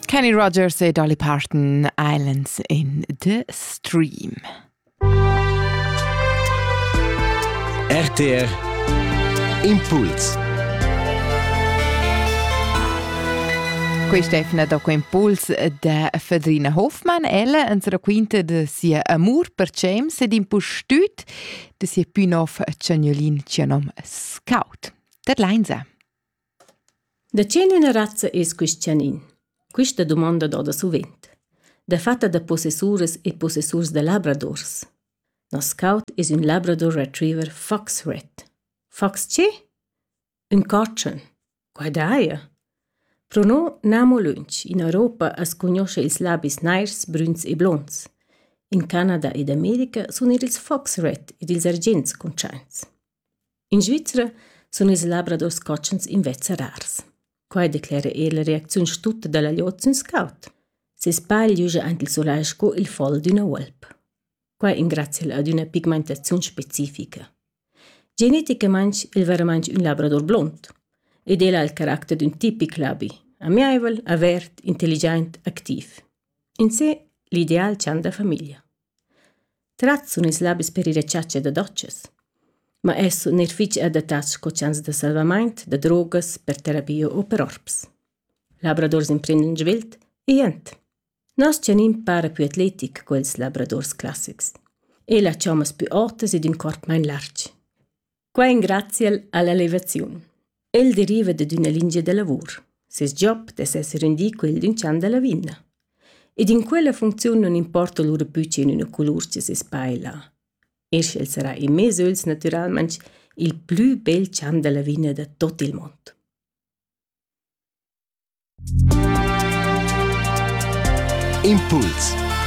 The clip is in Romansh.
Kenny Rogers e Dolly Parton, Islands in the Stream. RTR Impuls Questa è fina da Impuls da Fedrina Hofmann. Ella ens raquinta de sia amur per James ed impustüt de sia pünov Caniolin, cia nom Scout. Dat leinsa. Da che üna razza es quist chanin? Quista dumonda doda suvent. Dafatta da possessuras e possessurs da labradors. Nos scout es ün labrador retriever foxrat. Fox che? Ün cotschen. Quai daja. Pro no n'amo lönch. In Europa as cugnuoscha ils labis nairs, brüns e blonds. In Canada ed America sun eir ils foxrat ed ils argents cuntschaints. In Svizra sun ils labradors cotschens invezza rars. Quai declera eir la reacziun stutta da la glieud sün scout. Seis pagl giuja aint il solai sco il fol d'üna uolp. Quai ingrazia el ad üna pigmentaziun specifica. Geneticamaing el veramaing ün labrador blond ed el ha il caracter d'ün tipic labi, amiaivel, avert, intelligiaint, activ. In se l'ideal chan da famiglia. Tratsun es labis per ir a chatscha da dotschas, ma es sun eir fich adattats sco chans da salvamaint da drogas per terapia u per orps. Labradors imprendan svelt e jent. Nos chanin para più atletic co ils labradors classics. El ha chommas pü otas ed ün corp main larg. Quai engraziel all'elevaziun. El deriva dad üna lingia da lavur. Ses job dess esser rendì quel d'ün chan da lavina. Ed in quella funcziun non importa lura pü che in üna colur che ses paila. Er sch'el sarà in mez öls natüralmaing il plü bel chan da lavina da tot il mond. Impuls